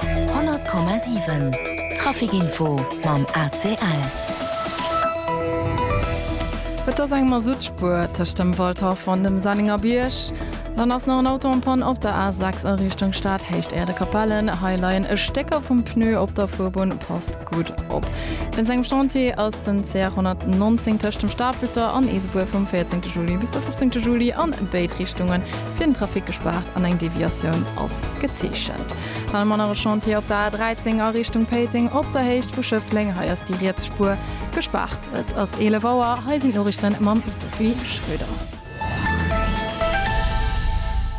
100,7 Trafic Info mam ACL. Et ass eng Masuttspuer tëscht dem Waldhaff an dem Sennenger Bierg. Dann ass nach en Auto en Panne op der A6 a Richtung Stad, Héicht Erdekapellen. Hei leien e Stécker vum Pneu op der Fuerbunn. Passt gutt op. Wéinst engem Chantier ass den CR 119 tëscht dem Stafelter an Eesebuer vum 14 Juli bis de 15 Juli an béid Richtungen fir den Trafic gespaart an eng Deviatioun ass gezeechent. Dann hu mer nach e Chantier op der A13 a Richtung Péiteng op der Héicht vu Schëffleng. Hei ass déi riets Spuer gespaart. Et ass 11 Auer. Hei sinn d'Norichten mam Sophie Schröder.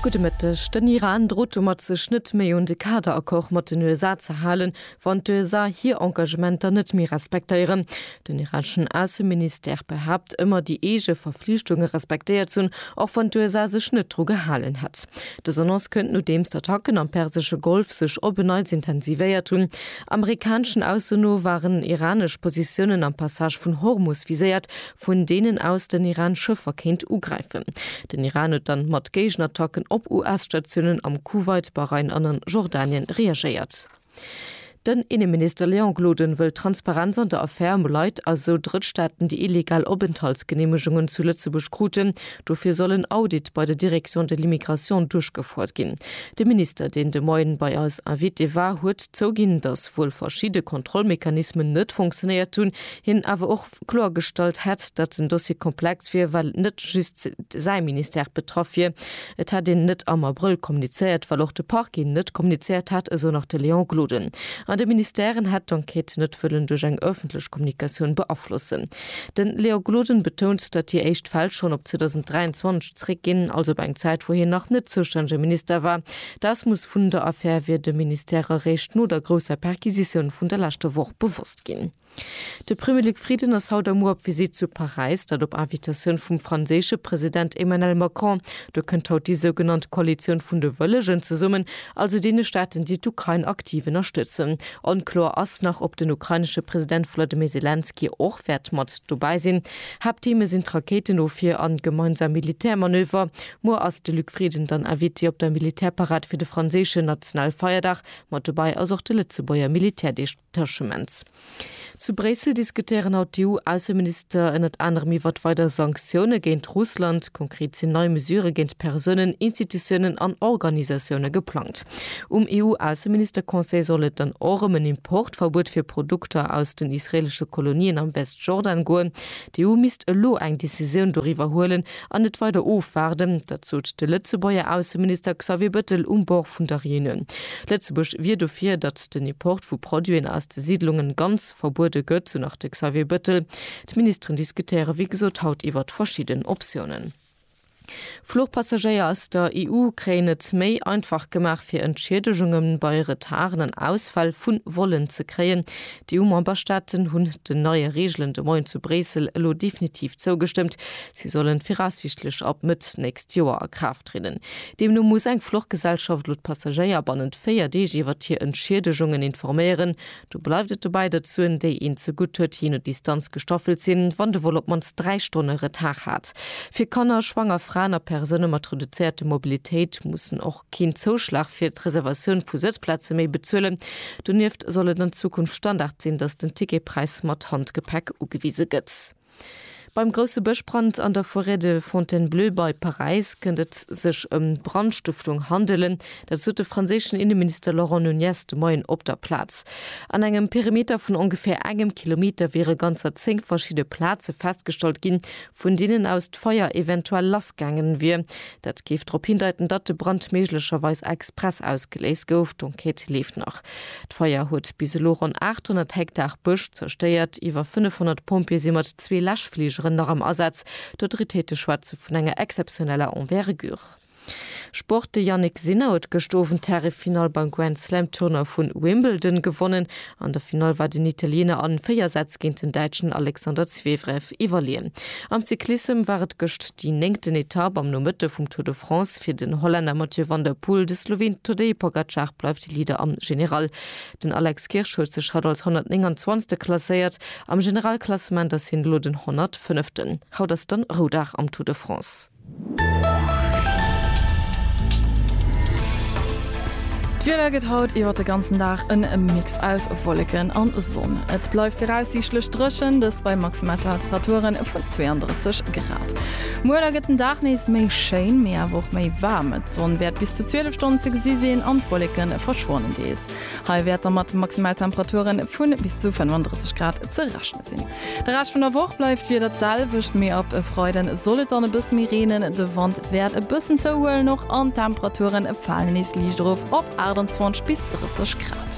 Gudde Mëtteg. Den Iran drot domat sech net méi un de Kader-Accord mat den USA ze halen, wann d'USA hir Engagementer net méi respektéieren. Den irakeschen Ausseministère behaapt ëmmer déi eege Verflichtunge respektéiert ze hunn, och wann d'USA sech net dru gehalen hätt. Dës Annonce kënnt nodeems d'Attacken am persesche Golf sech op en Neits intensivéiert hunn. Amerikaneschen Aussen no waren iranesch Positiounen am Passage vun Hormus viséiert, vun deenen aus den Iran Schëffer kéint ugräifen. Den Iran huet dann mat Géigenattacken op US-Statiounen am Kuwait, Bahrain an an Jordanien reagéiert. Den Inneminister Léon Gloden wëll Transparenz an der Affär ëm Leit a sou Drëttstaaten, déi illegal Openthaltsgeneemegungen zu Lëtzebuerg kruten. Dofir soll en Audit bei der Direction de l'immigration duerchgefouert ginn. De Minister, deen de Moien bei eis Invité war, huet zouginn, datt wuel verschidde Kontrollmechanismen net fonctionéiert hunn, hien awer och, kloergestallt hätt, datt den Dossier komplex wier, well net just säi Ministère betraff wier. Et hätt een net am Abrëll kommunizéiert, well och de Parquet net kommunizéiert hätt, esou nach de Léon Gloden. An de Ministèren hätt d'Enquête net wëllen duerch eng ëffentlech Kommunikatioun beaflossen. De Léon Gloden betount, datt déi éischt Fäll schonn op 2023 zeréckginn, also op eng Zäit, wou hien nach net zoustännege Minister war. D'Ausmooss vun der Affär wier dem Ministère eréischt no der grousser Perquisitioun vun der leschter Woch bewosst ginn. De Premier Luc Frieden ass haut a muer op Visitt zu Paräis, dat op Invitatioun vum franséische President Emmanuel Macron. Do kënnt haut déi sougenannt Koalitioun vun de Wëllegen zesummen, also deene Staaten, déi d'Ukrain aktiv ënnerstëtzen. Onkloer ass nach, ob den ukrainesche President Volodymyr Selenskyj och wäert mat dobäi sinn. Haapttheme sinn d'Rakéitenofwier an gemeinsam Militärmanöver. Muer ass de Luc Frieden dann Invité op der Militärparad fir de franséischen Nationalfeierdag. Mat dobäi ass och de Lëtzebuerger Militär. Tâchements. Zu Bréissel diskutéieren haut d'EU-Ausseminister ënnert anerem iwwert weider Sanktioune géint Russland. Konkret sinn nei Mesurë géint Persounen, Institutiounen an Organisatioune geplangt. Um EU-Ausseminister-Conseil soll et dann och ëm en Importverbuet fir Produkter aus den israeelesche Kolonien am Westjordan goen. D'EU misst elo eng Decisioun doriwwer huelen an net weider ofwaarden. Dat sot de Lëtzebuerger Ausseminister Xavier Bëttel um Bord vun der Reunioun. Lëtzebuerg wier dofir, datt den Import vu Produiten aus de Siidlungen ganz verbuede gëtt, sou nach de Xavier Bëttel. D'Ministeren diskutéiere wéi gesot haut iwwert verschidden Optiounen. Fluchpassagéier aus der EU kréien et méi einfach gemaach fir Entschiedegunge bei Retarden an Ausfäll vu Vollen ze kréien. D'EU-Memberstaaten hunn den neie Reegelen de Moien zu Bréissel elo definitiv zougestëmmt. Si sollen viraussiichtlech ab Mëtt nächst Joer a Kraaft trieden. Deemno muss eng Fluchgesellschaft elo d'Passagéier bannent 4 Deeg iwwert hir Entschiedegungen informéieren, Do bleift et dobäi, datt d'Suen, déi een zegutt huet, jee no Distanz gestaffelt sinn, wann de Vol op d'mannst dräi Stonne Retard hat. Fir Kanner, schwanger Fraen a Persoune mat reduzéierter Mobilitéit mussen och keen Zouschlag fir d'Reservatioun vu Sëtzplaze méi bezuelen. Donieft soll et an Zukunft Standard sinn, datt den Ticketpräis mat Handgepäck ugewise gëtt. Beim grousse Bëschbrand an der Forêt de Fontainebleau bei Paräis kënnt et sech ëm Brandstëftung handelen. Dat sot de franséischen Inneminister Laurent Nunez de Moien op der Plaz. An engem Perimeter vun ongeféier engem Kilometer wiere ganzer zéng verschidde Plaze festgestallt ginn, vun deenen aus d'Feier eventuell lassgaangen wier. Dat géif drop hindeiten, datt de Brand méiglecherweis express ausgeléist gouf. D'Enquête leeft nach. D'Feier huet bis elo ronn 800 Hektar Bësch zerstéiert. Iwwer 500 Pompjeeë si mat zwee Läschfligeren nach am Asaz. D'Autoritéite schwätze vun enger exzeptioneller Envergure. Sport, De Jannik Sinner huet gëscht Owend d'Härefinall beim Grand Slam Tournoi vu Wimbledon gewonnen. An der Finall war den Italiener a 4 Sätz géint den Däitschen Alexander Zverev. Etapp iwwerleeën. Am Cyclissem war et gëscht déi néngten Etapp am Nomëtte vum Tour de France fir den Hollänner Mathieu van der Poel. De Sloween Tadej Pogacar bleift Leader am General. Den Alex Kirsch huet sech haut als 129. klasséiert. Am Generalklassement ass hien elo den 105. Haut ass dann Roudag am Tour de France. D'Wieder gëtt haut iwwer de ganzen Dag en Mix aus Wolleken an Sonn. Et bleift viraussiichtlech dréchen, dëst bei Maximaltemperature vun 32 Grad. Muer da gëtt den Dag nees méi schéin, mee awer och méi waarm. D'Sonn wäert bis zu 12 Stonnen ze gesi sinn an d'Wolleke verschwannen deels. Hei wäert da mat Maximaltemperature vu bis zu 35 Grad ze rechne sinn. De Rescht vun der Woch bleift d'Wieder d'selwecht, mee ab e Freiden soll et dann e bësse méi reenen. De Wand wäert e bëssen zouhuelen och an d'Temperature falen nees liicht erof op 28 bis 30 Grad.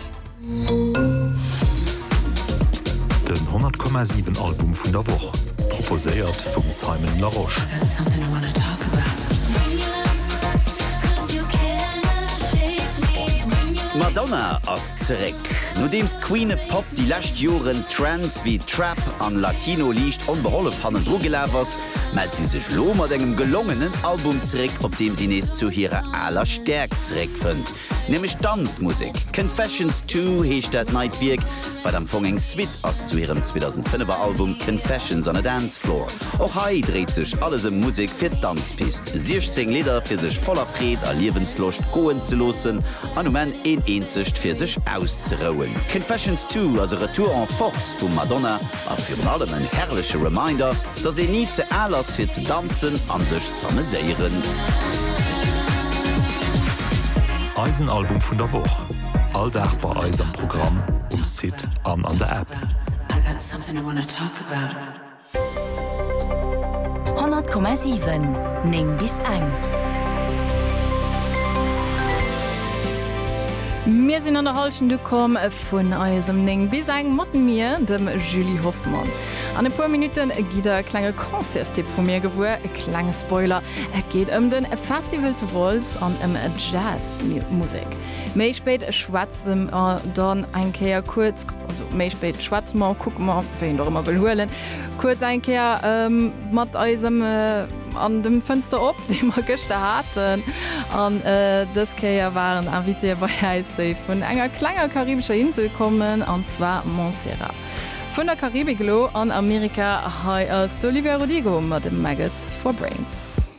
Den 100,7 Album vun der Woch, proposéiert vum Simon Larosche. D'Madonna ass zeréck! Nodeems d'Queen of Pop déi lescht Joren Trends wéi Trap an Latino liicht onbehollef hannendru gelaf ass, mellt si sech lo mat engem gelongenen Album zeréck, op deem si nees zu hirer aler Stäerkt zeréckfënnt, nämlech d'Danzmusek. Confessions Two heescht dat neit Wierk, wat am Fong eng Suite ass zu hirem 2005 er Album Confessions on a Dance Floor. Och hei dréit sech alles ëm Musek fir d'Danzpist, 16 Lidder fir sech voller Freed a Liewensloscht goen ze loossen An um Enn een eenzegt fir sech auszerouen. Confessions Two ass e Retour en Force vum Madonna a virun allem en herrleche Reminder, dass een ni ze al ass fir ze danzen an sech z'ameséieren. Eisen Album vun der Woch, all Dag bei eis am Programm, um Site an an der App. 100,7 9 bis eng. Mir sinn an der Hallschent ukomm vun eisem 9 bis eng mat mir, dem Julie Hoffmann. An e puer Minutte gitt der e klenge Concertstipp vu mir gewuer. E klenge Spoiler, et geet ëm de Festival zu Wolz an ëm Jazz Musek. Méi spéit schwätzen. Wëll mer dann eng Kéier kuerz, also méi spéit schwätze mer, kucke mer, wéi een och ëmmer wëll huelen, kuerz eng Kéier mat eisem an dem Fënster op, dee mer gëschter haten. An dës Kéier waren Invitéë bei äis, déi vun enger klenger karibescher Insel kommen, an zwar Montserrat. Vun der Karibik elo an Amerika, hei ass d'Olivia Rodrigo mat Maggots for Brains.